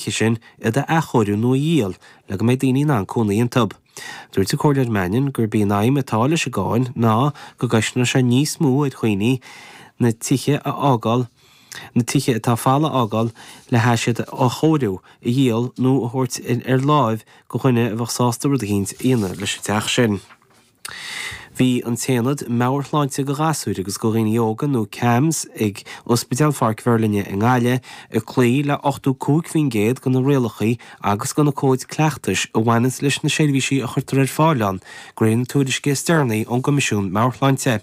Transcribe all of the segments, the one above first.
sé sin, iad a athchóiriú nó a dhíol le go mbeidh daoine in ann cónaí iontu. Dúirt an Comhairleoir Mannion gurb í an aidhm atá leis an gcáin ná go gcosnóidh sé níos mó ar dhaoine na tithe a fhágáil na tithe atá folamh a fhágáil le hais iad a athchóiriú, a dhíol nó a thabhairt ar lámh go dhuine a bheadh sásta rud eicínt a dhéanamh leis an teach sin. Bhí an t-aonad meabhairshláinte go ghasúir agus go dhaoine óga nó CAMHS ag Ospidéal Pháirc Mheirlinne i nGaillimh ag cloí le 85% go na rialachaí agus go na cóid cleachtais a bhaineanns leis na seirbhísí a chuirtear ar fáil ann go réir na tuairisce is deireanaí ón gCoimisiún Meabhairshláinte.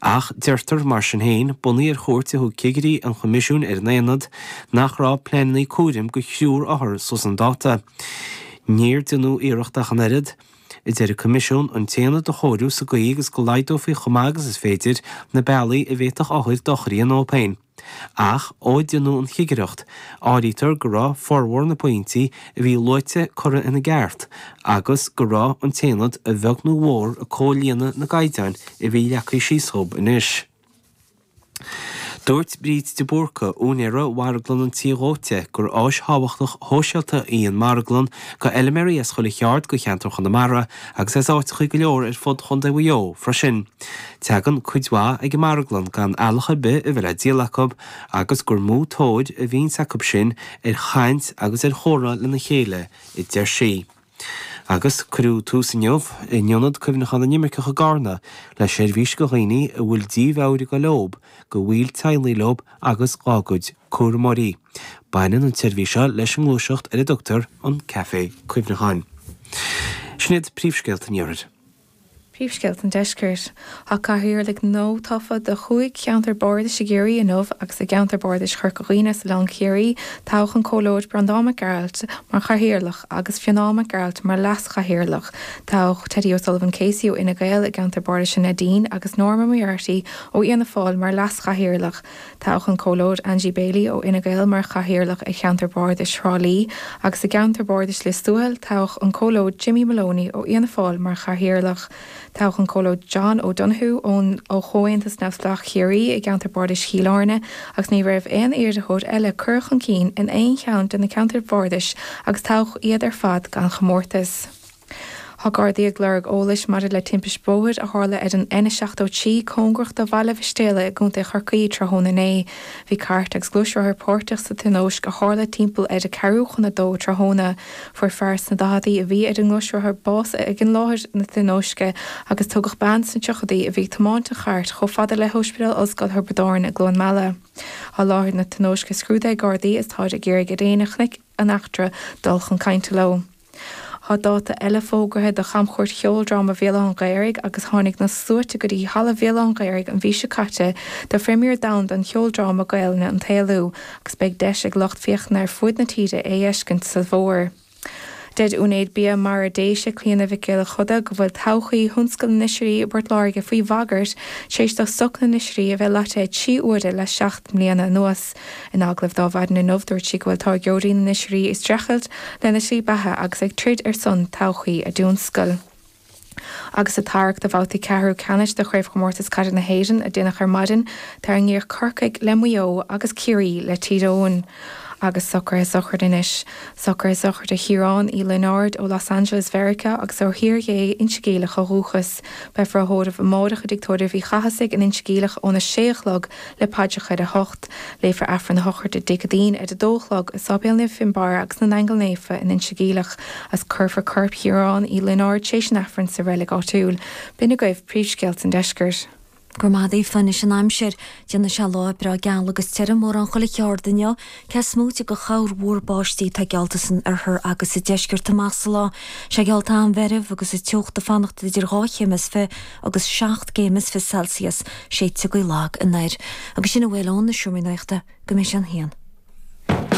Ach deirtear mar sin féin, bunaithe ar chuairt a thug cigirí an Choimisiúin ar an aonad, nach raibh pleanannaí cúraim go thriúr othar suas chun dáta. Níor déanadh iarracht ach an oiread. a deir an Coimisiún an tAonad a chóiriú sa gcaoi agus go laghdófaí chomh maith agus is féidir na bealaí a bhféadfadh othair dochar a dhíona dhób féin. Ach, ó déanadh an chigireacht, áirítear go raibh formhór na bpointí a bhí luaite curtha ina gceart agus go raibh an tAonad a bheag nó a mhór ag comhlíonadh na gcaighdeáin a bhí leagtha síos dhób anois. Dúirt Bríd de Búrca, úinéara Mharglann an Tí Dhóite, gur áis thábhachtach shóisialta í an Mharglann go fheiliméaraí as chuile cheard go cheantar Chonamara agus as áiteachaí go leor ar fud Chondae Mhaigh Eo freisin. Teagann cuid mhaith ag an Marglann gan eallach ar bith a bheith le díol acub agus gur mó tóir a bhíonns acub sin ar chaint agus ar chomhrá lena chéile, a deir sí. Agus cuireadh tús inniu, in Ionad Cuimhneacháin na nImirceach i gCarna, le seirbhís go dhaoine a bhfuil dímheabhair ag gabháil dhób, go bhaill teaghlaigh leob agus dhá gcuid cúramóirí. Baineann an tseirbhís seo leis an ngluaiseacht ar a dtugtar an Café Cuimhneacháin. Sin iad príomhscéalta an iarthair. Príomhscéalta an Deiscirt. Tá Cathaoirligh nua tofa do chúig cheantar bardais i gCiarraí inniu agus i gceantar bardais Chorca Dhuibhne Oileán Chiarraí toghadh an Comhairleoir Breandán Mac Gearailt mar Chathaoirleach agus Fionán Mac Gearailt mar Leas Chathaoirleach toghadh Teddy O'Sullivan Casey ó Fhine Gael i gceantar bardais an Neidín agus Norma Moriarty ó Fhianna Fáil mar Leas Chathaoirleach Toghadh an Comhairleoir Angie Baily ó Fhine Gael mar Chathaoirleach i gCeantar Bardais Thrá Lí agus i gCeantar Bardais Lios Tuathail toghadh an Comhairleoir Jimmy Moloney ó Fhianna Fáil mar Chathaoirleach. Toghadh an Comhairleoir John O Donoghue ón ó Chomhaontas Neamhspleách Chiarraí i gCeantar Bardais Chill Airne agus ní raibh aon iarrthóir eile curtha chun cinn in aon cheann de na Ceantair Bhardais agus toghadh iad ar fad gan chomórtas. Tá Gardaí ag lorg eolais maidir le timpist bhóthair a tharla ar an N73 cóngarach do Bhaile Mhistéala i gContae Chorcaí tráthnóna inné. Bhí cairt agus gluaisrothar páirteach sa tionóisc a tharla timpeall ar a ceathrú chun a dó tráthnóna. Fuair fear sna daichidí a bhí ar an ngluaisrothar bás ag an láthair na tionóisce agus tugadh bean sna tríochaidí a bhí ag tiomáint an chairt chomh fada le hOspidéal Ollscoil Thiobraid Árann i gCluain Meala. Tá láthair na tionóisce scrúdaithe ag Gardaí is táid ag iarraidh ar éinne a chonaic an eachtra dul chun cainte leo. Tá dáta eile fógartha do chamchuairt Cheoldráma Bhéal Átha'n Ghaorthaidh agus tháinig na sluaite go dtí Halla Bhéal Átha'n Ghaorthaidh an mhí seo caite do phremière domhanda an cheoldráma Gaolainne An tÉalú agus beidh deis ag lucht féachana ar fuaid na tíre é a fheiscint sa bhfómhar. Deir Úinéir Bia Mara Déise, Clíona Mhic Giolla Chuda, go bhfuil todhchaí thionscal na n-oisrí i bPort Láirge faoi bhagairt tar éis do stoc na n-oisrí a bheith loite trí huaire le seacht mbliana anuas. In agallamh d'Adhmhaidin inniu, dúirt sí go bhfuil táirgeoirí na n-oisrí ag streachailt lena slí beatha agus ag troid ar son todhchaí a dtionscail. Agus sa tarrac do bhabhtaí ceathrú ceannais de Chraobhchomórtas Caide na hÉireann a déanadh ar maidin, tarraingíodh Corcaigh le Maigh Eo agus Ciarraí le Tír Eoghain. Agus socruithe sochraide anois. Socruithe sochraide Chiaráin Uí Lionáird ó Los Angeles Mheiriceá agus ó Thír Ghé, Inse Geimhleach ó dhúchas. Beifear á thórramh amárach i dTigh Tórraimh Uí Chathasaigh in Inse Geimhleach óna sé a chlog le paidreacha ar a hocht. Léifear Aifreann a shochraide Dé Céadaoin ar a dó a chlog i Sáipéal Naomh Fionnbarr agus na nAingeal Naofa in Inse Geimhleach agus cuirfear corp Chiaráin Uí Lionáird tar éis an Aifrinn sa reilig áitiúil. B'in agaibh príomhscéalta an deiscirt. Go raibh maith agat Aoife, anois an aimsir. Déanfaidh sé lá breá geal agus tirim, mórán chuile cheard inniu. Cés moite de chorrmhúr báistí atá geallta san oirthear agus sa deisceart amach sa lá. Tá sé geallta an-mheirbh agus an teocht ag fanacht idir dhá chéim is fiche agus seacht gcéim is fiche Celsius, séidfidh gaoth lag anoir. Agus sin a bhfuil ó na Seomraí Nuachta go mbeidh sé an haon.